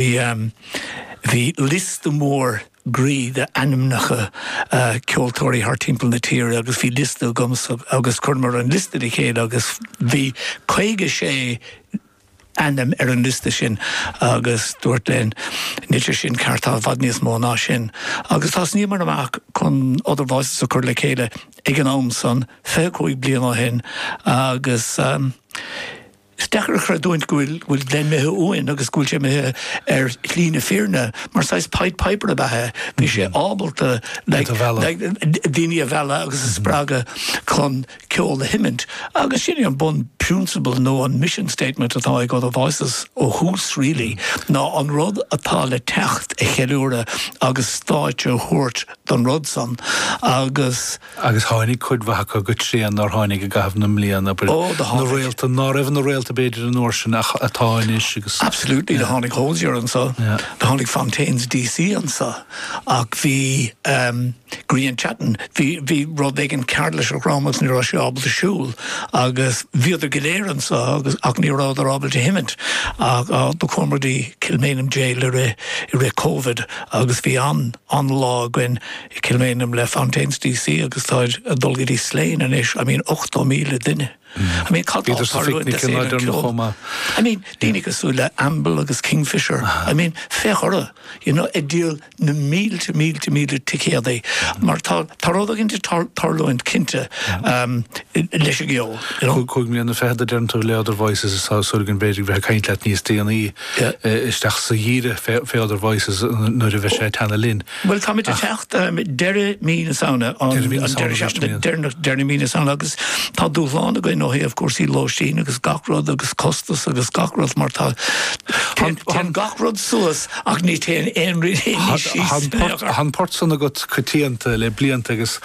Bhí liosta mór groí d'ainmneacha ceoltóirí thart timpeall na tíre agus bhí liosta agamsa agus chuireamar an liosta le chéile agus bhí 56 ainm ar an liosta sin agus dúirt Glen níl sé sin ceart tá i bhfad níos mó ná sin agus thosnaíomar amach chun Other Voices a chur le chéile ag an am san 25 bliain ó shin agus Is deacair a chreidiúint go bhfuil Glen imithe uainn agus go bhfuil sé imithe ar shlí na fírinne. Mar saghas Pied Piper ab ea é. Bhí sé ábalta daoine a mhealladh agus a spreagadh chun ceol a sheimint agus sin é an bun prionsabal nó an mission statement atá ag Other Voices ó thús really ná an rud atá le teacht a cheiliúradh agus stáitse a thabhairt don rud san agus agus tháinig cuid mhaith acu go tréan nár tháinig i gcaitheamh na mblian, abair, Ó, do tháinig. réalta, ná raibh ina réalta b'fhéidir an uair sin ach atá anois agus. Absolutely, do tháinig Hozier anseo, Yeah. do tháinig Fontaines DC anseo, ach bhí em, Grian Chatten, bhí, bhí rud éigin cearr lena dhrom agus ní raibh sé ábalta siúl agus bhíodar go léir anseo agus ach ní rabhadar ábalta seimint ach á, do chuamar go dtí Kilmainham Jail i rith, i rith Covid agus bhí an, an-lá againn i gCill Mhaighneann le Fontaines DC agus táid ag dul go dtí Slane anois, I mean 80,000 duine. I mean cad tá ag tarlú in Éirinn le ceol? I mean daoine cosúil le Amble agus Kingfishr, I mean féach orthu, you know ag díol na mílte mílte mílte ticéadaí mar tá tá rud éigin ag tarlúint cinnte leis an gceol. Cúig bliana fichead a deireann tú le Other Voices is tá súil againn b'fhéidir go bhféadfaimid caint leat níos déanaí. isteach sa gheimhreadh fé Other Voices nuair a bheidh sé ag teannadh linn. Bhuel, táimid ag teacht i ndeireadh mí na Samhna, an deireadh seachtaine deireanach de mhí na Samhna agus tá dúshlán againn ó thaobh cúrsaí lóistín agus gach rud agus costas agus gach rud mar tá téann gach rud suas ach ní théann aon rud síos. Tá an port san agat coitianta le blianta agus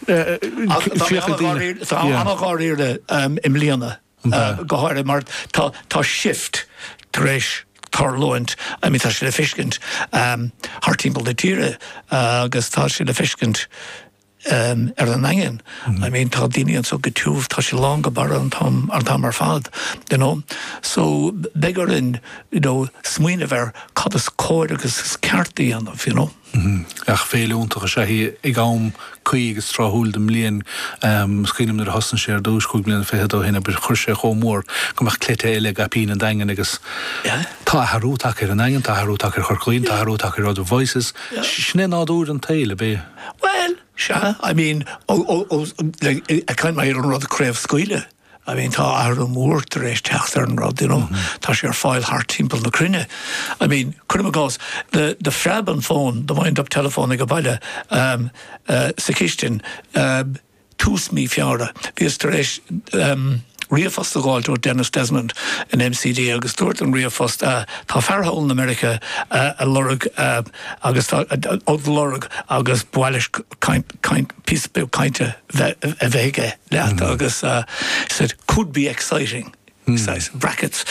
féachaint. Tá ana-dháiríre i mbliana. an dá. go háirithe mar tá shift tar éis tarlúint, I mean tá sé le feiscint thart timpeall na tíre agus tá sé le feiscint ar an nDaingean, I mean tá daoine anso go tiubh, tá sé lán go barra an t-am ar fad, you know. So beidh orainn, you know, smaoineamh ar cad is cóir agus is ceart a dhéanamh, you know. Ach féile iontach is ea í ag am cuí agus tráthúil den mbliain. Is cuimhnim nuair a thosnaigh sé ar dtúis cúig bliana fichead ó shin abair, chuir sé chomh mór go mbeadh cleite eile i gcaipín an Daingin agus tá athrú tagtha ar an Daingean, tá athrú tagtha ar Chorca Dhuibhne, tá athrú tagtha ar Other Voices. Sin é nádúr an tsaoil, ab é? Bhuel, sea, I mean, ó, ó, ó, like, ag caint, mar an rud craobhscaoileadh. I mean, tá athrú mór tar éis teacht ar an rud, you know, tá sé ar fáil thart timpeall na cruinne. I mean, cuirim i gcás, the, the phreab an fón, the wind up telephone age baile, um, uh, sa chistin, um, tús mí Feabhra, bhíos tar éis, um, ríomhphost a dh'fháilt ó Denis Desmond in MCD agus dúirt an ríomhphost, uh, tá fear thall in America uh, ag lorg uh, agus tá, uh, lorg agus ba mhaith leis caint, caint, píosa beag cainte a bheith aige leat agus it could be exciting, says in brackets.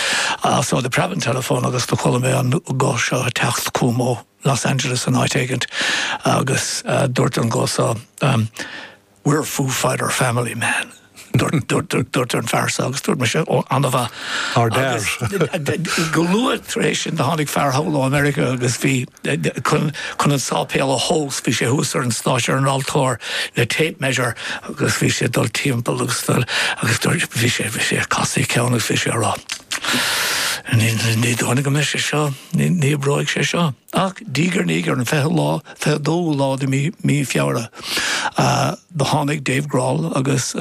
So do phreab an teileafón agus do chuala mé an guth seo ag teacht chugam ó Los Angeles nó áit éigint agus dúirt an guth seo umm we're a Foo Fighter family man. Dúirt an fear seo agus dúirt mise ó ana-mhaith. Ár dad. Go luath tar éis sin do tháinig fear thall ó America agus bhí. chun an sáipéal a thomhas. Bhí sé thuas ar an stáitse ar an altóir le tape measure agus bhí sé ag dul timpeall agus ag dul agus dúirt, bhí sé, bhí sé, ag casadh a cheann agus bhí sé ag rá, ní dóigh liom go mbeidh sé seo, ní oibreoidh sé seo. Ach diaidh ar ndiaidh, ar an fichiú lá, fiche dóú lá de mhí, mí Feabhra, do tháinig Dave Grohl agus,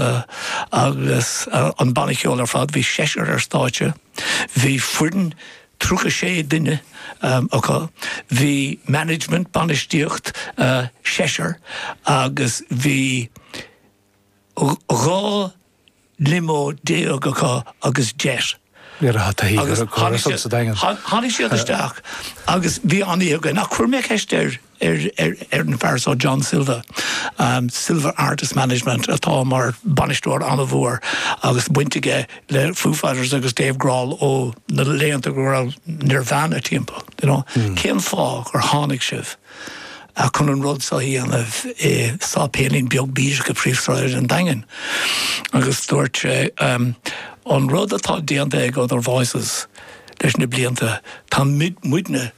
agus an banna ceoil ar fad, bhí seisear ar stáitse, bhí foireann, 36 duine acu. Bhí management, bainistíocht, seisear agus bhí 12 limo acu agus jet. Ní raibh taithí ar an gcóras ann sa Daingean. Tháinig siad isteach agus bhí an-oíche againn ach chuir mé ceist ar. ar an bhfear seo John Silva, Silva Artist Management, atá mar bhainisteoir an-mhór agus baint aige le Foo Fighters agus Dave Grohl ó na laethanta go raibh Nirvana timpeall, you know. Cén fáth gur tháinig sibh chun an rud seo a dhéanamh i sáipéilín beag bídeach i bpríomhshráid an Daingin? Agus dúirt sé, An rud atá déanta ag Other Voices leis na blianta, tá muidne tar